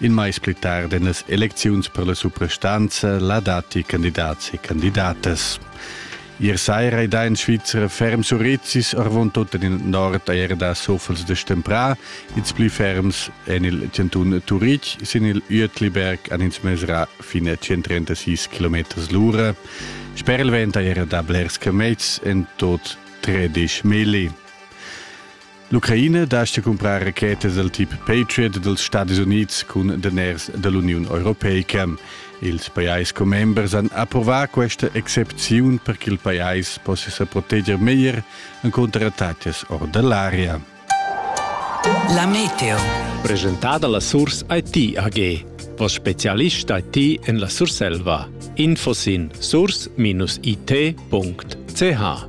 In mais pli tard en las elecziuns per la suprastanza la datti candidats e candidatas. Ier saira è da in Svizzer ferm Surizis arvon tot en il nord er da Sofels de Stempra, ils pli ferms en il cantun Turitg sin il Uetliberg an ins mesra fine a 136 km l'ura. Sper il vent era da blers camets en tot 13 mili. L'Ucraina dastga cumprar rachetas dal tip Patriot dals Stadis Unids cun daners da l'Uniun Europeica. Ils pajais commembers han approvà questa excepziun per ch'il pajais possia sa proteger meglier encunter attacas or da l'aria. La meteo. Presentada la Source IT AG. Vos specialist IT en la Surselva. Info sin source-it.ch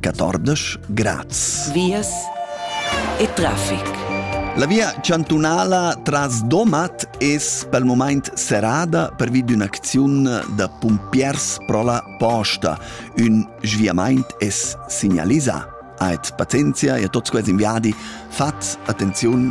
14 grads. Vias e traffic. La via chantunala tras Domat es pel moment serrada pervi d'ün'acziun da pumpiers pro la posta. Ün sviamaint es signalisà. Aet pazienzia e a tots quels inviadi fat attenziun